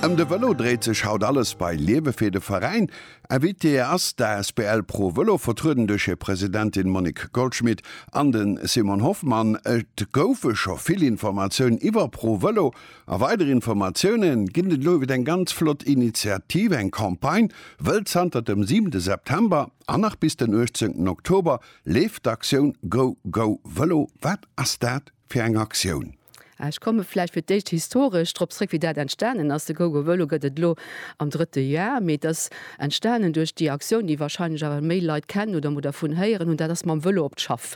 Ëm de Vëlo dréit sech haut alles bei Liewefee, de Veräin. Invitée ass d'asbl Pro Vëlo, vertrueden duerch hir Presidentin Monique Goldschmit an de Simon Hoffmann. Et goufe scho vill Informatiounen iwwer Pro Vëlo a weider Informatioune ginn et elo iwwer eng ganz flott Initiativ, eng Campagne. Wëll zanter dem 7 September an nach bis den 18 Oktober leeft d'Aktioun Go Go Vëlo. Wat ass dat? fir eng Aktioun. Ech komme vläicht fir d'éischt historesch drop zréck, wéi dat entstanen ass. De GoGoVëlo gëtt et elo am drëtte Jar, mee et ass entstanen duerch déi Aktioun, déi wahrscheinlech awer méi Leit kennen oder emol dervun héieren hunn, dat ass mam Vëlo op d'Schaff.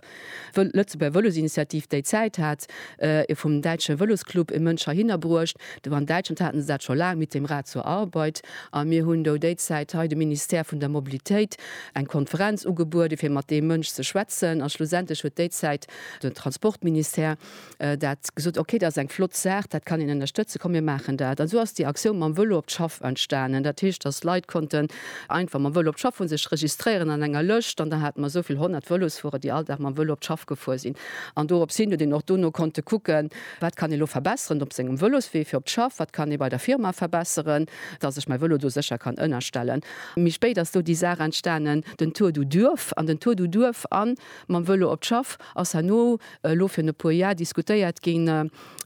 D'Lëtzebuerger Vëlosinitiativ déi Zäit hat e vum däitsche Vëlosclub e Mënsch heihinner bruecht. Do an Däitschland haten se dat scho laang, Mit dem Rad zur Arbeit. A mir hunn do déi Zäit hei dem Ministère vun der Mobilitéit eng Konferenz ugebuede fir mat deem Mënsch ze schwätzen. A schlussendlech huet déi Zäit Den Transportministère dat gesot, ok, dat ass eng flott Saach, dat kann een ënnerstëtzen, komm mir maachen dat. An esou ass déi Aktioun mam Vëlo op d'Schaff entstanen. Dat heescht, datt Leit konnten einfach mam Vëlo op d'Schaff fueren, sech registréieren an enger Lëscht an da hate mer esou vill honnert Vëlosfuerer, déi all Dag mam Vëlo op d'Schaff gefuer sinn. An dorops hin huet een och dono konnte kucken, wat kann ee lo verbesseren op sengem Vëloswee fir op d'Schaff, wat kann ee bei der Firma verbesseren, datt ech mäi Vëlo do sécher kann ënnerstellen. Méi spéit ass do déi Saach entstanen, den Tour du Duerf an den Tour du Duerf an. Mam Vëlo op d'Schaff ass herno elo virun e puer Jar diskutéiert gi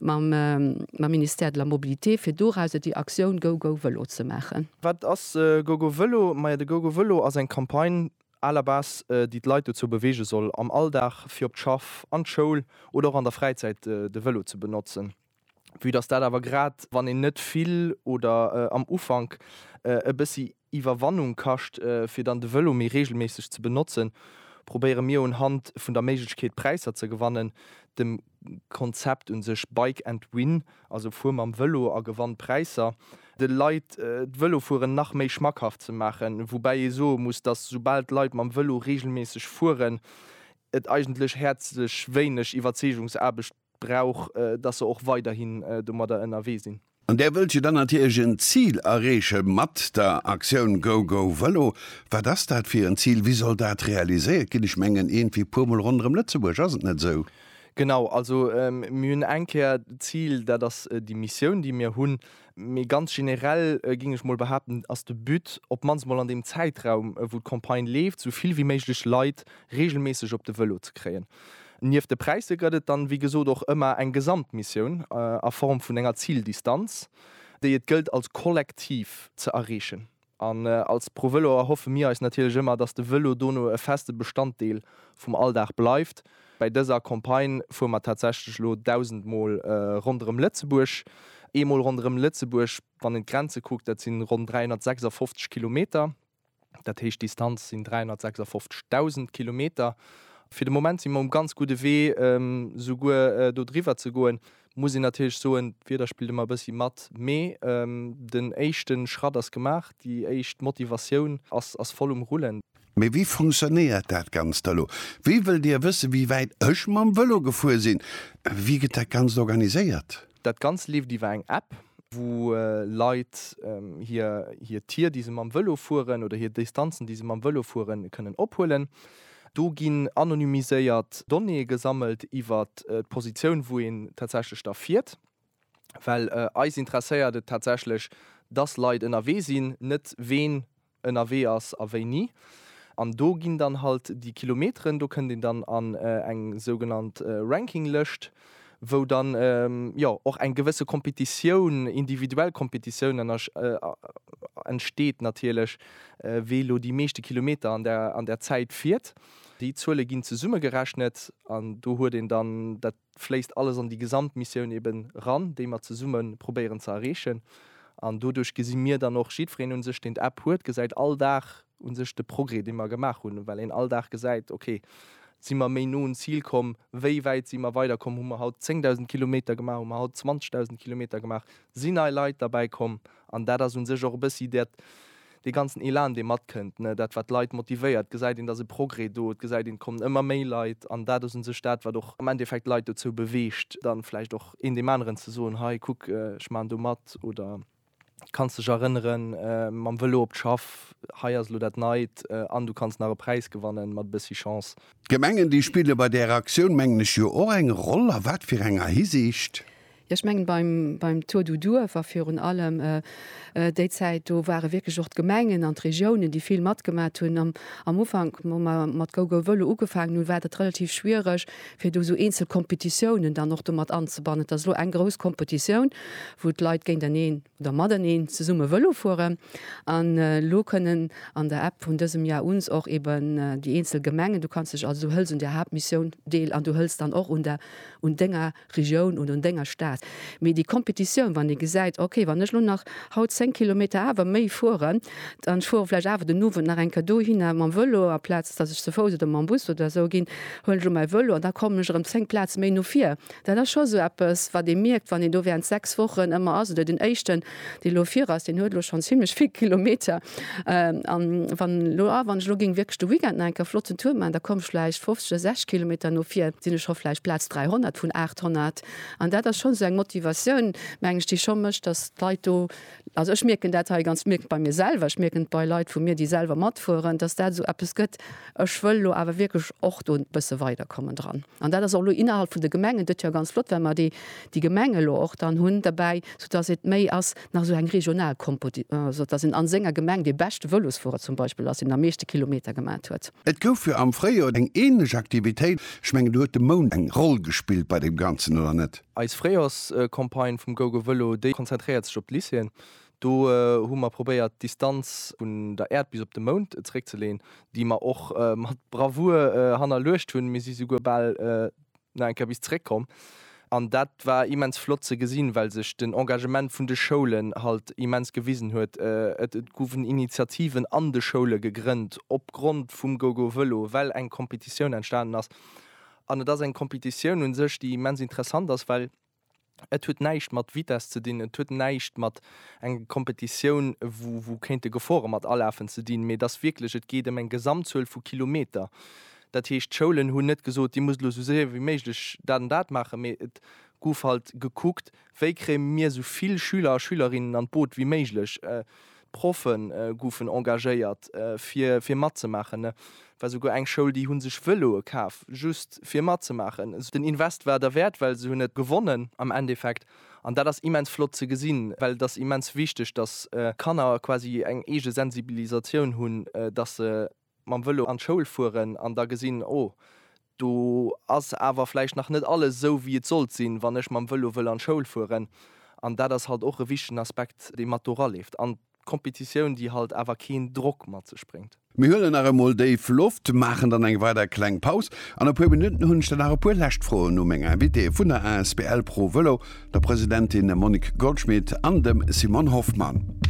mam Ministère de la Mobilité, fir dorauser déi Aktioun Go Go Vëlo ze maachen. Wat ass Go Go Vëlo? Majo, de Go Go Vëlo ass eng Campagne à la base, déi d'Leit dozou beweege soll, am Alldag fir op d'Schaff, an d'Schoul oder och an der Fräizäit de Vëlo ze benotzen. Vue dass dat awer grad wann een net vill oder am Ufank e bëssi Iwwerwannung kascht fir dann de Vëlo méi reegelméisseg ze benotzen, probéiere mir un Hand vun der Méiglechkeet Präisser ze gewannen, dem Konzept un sech Bike and Win, also fuer mam Vëlo a gewann Präisser, de Leit d'Vëlofueren nach méi schmackhaft ze maachen, woubäi ee soe muss, dass soubal d'Leit mam Vëlo reegelméisseg fueren, et eigentlech häerzlech wéineg Iwwerzeegungsaarbecht brauch, dass se och weiderhin domadder ënnerwee sinn. An där wëllt jo dann natierlech en Zil erreeche mat der Aktioun GoGoVëlo. Wat ass dat fir en Zil? Wéi soll dat realiséiert ginn? Ech mengen iergendwéi puer mol ronderëm Lëtzebuerg, ass et net esou? Genau, also mir hunn eng Kéier d'Zil, dat ass déi Missioun, déi mir hunn, Mee ganz generell, géing ech mol behaapten, ass de But, op d'mannst mol an deem Zäitraum, wou d'Campagne leeft, sou vill wéi méiglech Leit reegelméisseg op de Vëlo ze kréien. Nieft de Präisser gëtt et dann, wéi gesot, och ëmmer eng Gesamtmissioun a Form vun enger Zildistanz, déi et gëllt als Kollektiv ze erreechen. An als ProVelo erhoffe mir eis natierlech ëmmer, dass de Vëlo dono e feste Bestanddeel vum Alldag bleift. Bei dëser Campagne fuere mer tatsächlech elo 1.000 Mol ronderëm Lëtzebuerg. Ee Mol ronderëm Lëtzebuerg, wann een d'Grenze kuckt, dat sinn ronn 356 Kilometer. Dat heescht, d'Distanz sinn 356.000 Kilometer. Fir de Moment si mer um ganz gudde Wee, souguer do driwwer ze goen. muss een natierlech soen, d'Wieder spillt ëmmer e bëssi mat, mee den éischte Schratt ass gemaach, déi éischt Motivatioun ass voll um Rullen. Mee wéi funktionéiert dat Ganzt da elo? Wéi wëllt Dir wëssen, wéi wäit ech mam Vëlo gefuer sinn? Wéi gëtt dat Ganzt organiséiert? Dat Ganzt leeft iwwer eng App, wou Leit hir Tier, déi se mam Vëlo fueren, oder hir Distanzen, déi se mam Vëlo fueren, kënnen ophuelen. Do ginn anonymiséiert Donnéeë gesammelt iwwer d'Positioun, wou een tatsächlech da fiert, well eis interesséiert et tatsächlech, dass Leit ënnerwee sinn, net ween ënnerwee ass a wéini. An do ginn dann halt déi Kilometeren, do kënnt een dann an eng sougenannt Rankinglëscht. wou dann jo och eng gewësse Kompetitioun, individuell Kompetitioun entsteet natierlech, wee elo déi meeschte Kilometer an der an der Zäit fiert. Déi Zuele ginn zesummegerechnet an do huet een dann, dat fléisst alles an déi Gesamtmissioun eben eran, déi mer zesumme probéieren ze erreechen. An doduerch gesi mir dann och, jiddwereen un sech, deen d'App huet, gesäit all Dag, un sech de Progrès dee mer gemaach hunn, well een all Dag gesäit, ok, si mer méi no un Zil komm, wéi wäit si mer weider komm, hu mer haut 10.000 Kilometer gemaach, hu mer haut 20.000 Kilometer gemaach, sinn nei Leit derbäi komm an dat ass un sech och e bëssi dat, dee ganzen Elan dee matkënnt, dat wat d'Leit motivéiert, gesäit een, et ass e Progrès do, et gesäit een, et kommen ëmmer méi Leit an dat ass un sech dat wat och am Endeffekt d'Leit dozou beweegt, da vläicht och een deem aneren ze soen, hei kuck, ech maachen do mat oder kanns dech erënneren, mam Vëlo op d'Schaff, hei ass elo dat Neit an du kanns nach e Präis gewannen, mat e bëssi Chance. D'Gemengen, déi spille bei där Aktioun, mengen ech, jo och eng Roll. A wat fir enger Hisiicht? Jo, ech mengen, beim Tour du Duerf a virun allem déi Zäit, do ware wierklech och d'Gemengen an d'Regiounen, déi vill matgemat hunn. Am Ufank, wou mer mat GoGoVëlo ugefaangen hunn, war dat relativ schwiereg, fir do esou eenzel Kompetitiounen dann och do mat anzebannen. Et ass elo eng grouss Kompetitioun, wou d'Leit géinteneen oder mateneen zesumme Vëlo fueren. An elo kënnen an der App vun dësem Jar uns och eben déi eenzel Gemengen, du kanns dech also, du hëls un der Haaptmissioun deel an du hëls dann och un der, un denger. Regioun oder un denger Stad, mee déi Competitioun, wann ee gesäit, ok, wann ech elo nach haut 10 Kilometer awer méi fueren, an ech fuere vläicht awer den Owend nach eng Kéier dohinner mam Vëlo, amplaz datt ech ze Fouss oder mam Bus oder esou ginn, huelen ech elo mäi Vëlo an da kommen ech erëm 10 Plaze méi no vir. Dat ass scho esou eppes, wat ee mierkt, wann een do während 6 Wochen ëmmer ass oder den éischten. dee elo vir ass, deen huet elo schonn zimlech vill Kilometer. A wann elo, ah, wann ech elo géing wierklech de Weekend nach enker e flotten Tour maachen, da komm ech vläicht 50 oder 60 Kilometer no vir, sinn ech scho vläicht Plaz 300 vun 800. An dat ass schonn esou eng Motivatioun, meng ech, déi scho mécht, datt d'Leit do, also ech mierken dat hei ganz, mierken et bei mir selwer, ech mierken et bei Leit vu mir, déi selwer matfueren, datt dat esou eppes gëtt, ech wëll elo awer wierklech och do e bësse weiderkommen dran. An dat ass och elo innerhalb vun de Gemengen, dat jo ganz flott, well mer déi déi Gemengen elo och dann hunn dobäi, soudass et méi ass nach esou eng regional Kompo, déi esou dass een an senger Gemeng dee beschte Vëlosfuerer zum Beispill ass, deen am meeschte Kilometer gemat huet. Et gouf jo am Fréijoer eng ähnlech Aktivitéit. Ech mengen, do huet de Mound eng Roll gespillt bei deem Ganzen, oder net? Eis Fréijoerscampagne vum GoGoVëlo, déi konzentréiert sech op d'Lycéeën. Do hu mer probéiert d'Distanz vun der Äerd bis op de Mound zeréckzeleeën, déi mer och mat Bravour hannerluecht hunn. Mir si souguer bal nach eng Kéier bis zeréckkomm an dat war immens flott ze gesinn, well sech den Engagement vun de Schoulen halt immens gewisen huet. Et goufen Initiativen an de Schoule gegrënnt opgrond vum GoGoVëlo, well eng Competitioun entstanen ass. An et ass eng Competitioun u sech, déi immens interessant ass, well. Et huet näischt mat Vitess ze dinn, et huet näischt mat enger Kompetitioun, wou kéinte Gefore mat alafen, ze dinn, mee et ass wierklech, et geet ëm eng Gesamtzuel vu Kilometer. Dat heescht, d'Schoulen hunn net gesot, Dir musst elo esou séier wéi méiglech dat an dat maachen, mee et gouf halt gekuckt, Wéi kréie mir esou vill Schüler a Schülerinnen an d'Boot wéi méiglech? Proffe goufen engagéiert fir fir matzemaachen. Et war souguer eng Schoul déi hu sech Vëloe kaf just fir matzemaachen. Den Invest war derwäert, well se hunn et gewonnen am Endeffekt an dat ass immens flott ze gesinn, well et ass immens wichteg, datt Kanner quasi eng eege Sensibilisatioun hunn, datt se, mam Vëlo an d'Schoul fueren an da gesinn, oh, do ass awer vläicht nach net alles esou wéi et sollt sinn, wann ech mam Vëlo wëll an d'Schoul fueren. An dat ass halt och e wichtegen Aspekt, dee mat do raleeft. An d'Competitioun, déi halt awer keen Drock mat sech bréngt. Mir huelen nach emol déif Loft, maachen dann eng weider kleng Paus an e puer Minutten hunn ech dann nach e puer lescht Froen u meng Invitéeë vun der asbl Pro Vëlo, der Presidentin Monique Goldschmit an dem Simon Hoffmann.